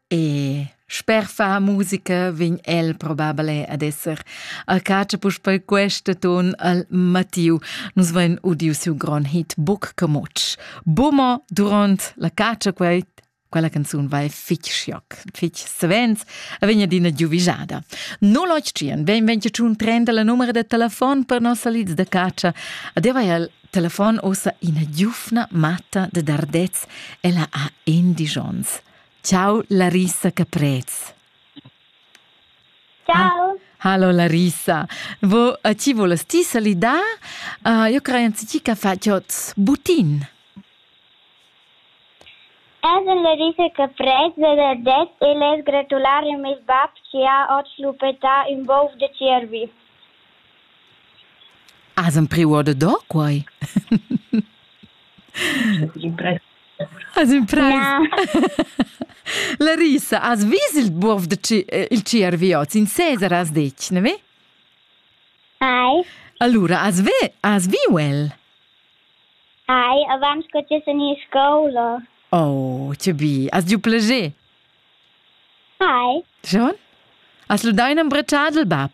E sper far musica vegn el probabel ad esser a catscha puspei questa ton al Mattiu. Nus vein udiu siu grond hit Buc Camutsch. Bummo duront la catscha quei quella canzun vai fich scioc, fich savens, a vegn adina giuvigiada. 085 ben venci un 30 la numero de telefon per nossa lids da caccia. Adeva al telefon ossa ina giufna matta de Dardez, ella ha endisch ons. Ciao Larissa Caprez. Ciao. Hallo Larissa, Vo, uh, ci volas ti salidar? Uh, io creo anzici che faciot butin. Esa Larissa Caprez de Dardez e les gratulare a mes bab che ha ot lupeta un bov de cervi. Has empriu ordado quei? Has imprais? La risa, has vis il buob da il tgiervi oz? In Cesar has detg, ne ve? Ai. Allura, has, ve, has viu el? Ai, avant che ti en scola. Oh, che bi. Has giu plager? Hai. Schon? Has lu dau in embretschar dil bab?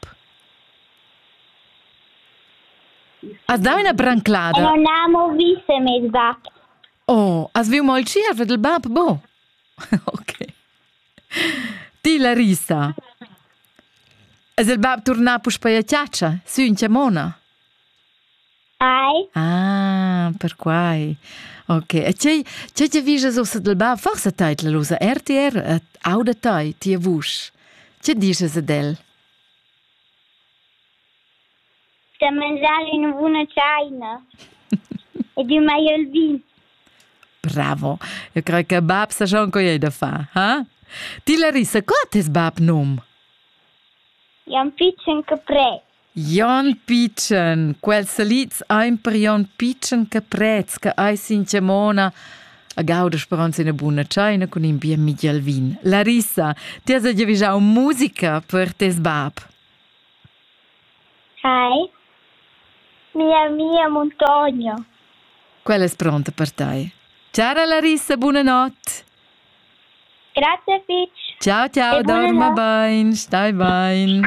Has dau ina branclada? Non amo viste mes bab. Oh, has viu mo il tschierv dil bab, bo? ok. Ti, Larissa. Es il bab turnà puspei a chatscha, sün chamona? Ai. Ah, perquai. Ok. E tgei, tgei ti vises ussa dal bain? Forsa teitla l'usa RTR et auda tai, tia vusch. Tge dices ad el? Sta a mangiar ina buna tscheina ed il maiel vin. Bravo. Eu cred che bab sa schon co ei da fa, ha? Ti Larissa, co ha tes bab num? Jan Pitschen Capret. Jon pitschen, quels salids ein per Jon pitschen che prez che ei sin Tgemona. A gaudas per ans ina buna tscheina cun in bien Miguel Vin. Larissa, ti has giavischau musica per tes bab. Hi. Mia mia Montonio. Quella è pronta per te. Ciao Larissa, buonanotte. Grazie Fitch. Ciao ciao, dorma bene, stai bene.